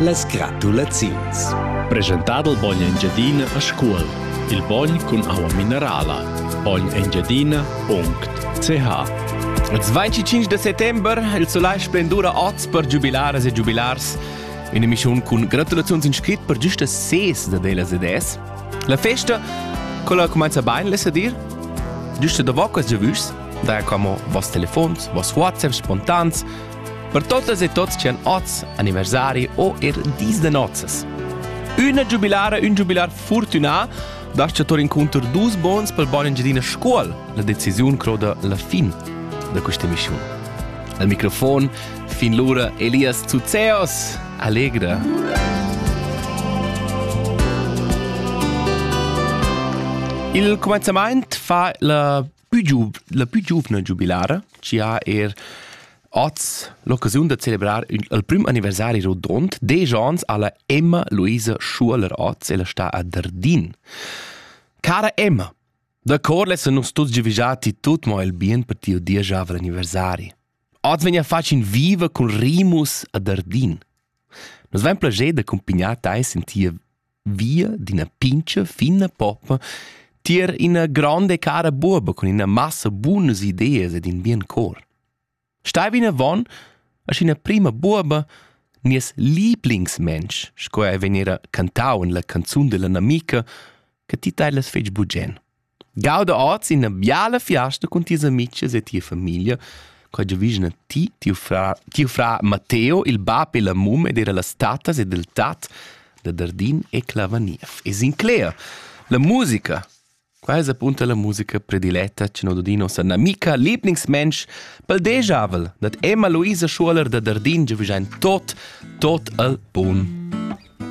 Las gratulaziuns. Preschentà dal bogn Engiadina a Scuol. Il bogn cun aua minerala. Bogn-engiadina.ch Ils 25 de settembre il soleil splendura oz per giubilaras e giubilars. In emissiun cun gratulaziuns in scrit per giusta ses da delas ed es. La festa, quella cumanza bain, less dir? Giusta da vocas giavüs, daja como vos telefons, vos WhatsApps spontans, per totas e tots chi han hoz anniversari o er dis da nozzas. Üna giubilara, ün giubilar fortunà dascha tour incunter dus bons pel bon Engiadina Scuol. La decisiun croda la fin da questa emissiun. Al microfon fin l'ura Elias Zuzeos. Allegra! Il comenzament fa la pü giuv, la pü giuvna giubilara, chi ha er oz l'occasiun da celebrar il, il prim anniversari rodond, desch ans alla Emma Luisa Schuler oz, ella sta a Dardin. Cara Emma, da corles nus tuts givigiati tut mo il bien per tiu diesavel anniversari. Oz vegna fatg in viva cun Rimus a Dardin. Nos vem plager da accompagnar teis in tia via d'ina pincha fina poppa tier ina gronda e cara buoba cun ina massa bunas ideas ed in bien cor. Stai vinavon a ina prima buoba nies lieblingsmensch, sco ei vegnera cantau en la canzun della namica, che ti tei las fetg bugen. Gauda oz ina biala fiasta cun tis amices e tia famiglia, quai giovigna ti, tiu fra, tiu frar Matteo, il bab e la mum ed era las tattas ed il tat da Dardin e Clavaniev. E Sinclair, la musica. Qua es apunta la musica prediletta che no dudi nossa namica lieblingsmensch pel dejavel dad Emma Luisa Schuoler da Dardin giovigjain tot, tot al bun.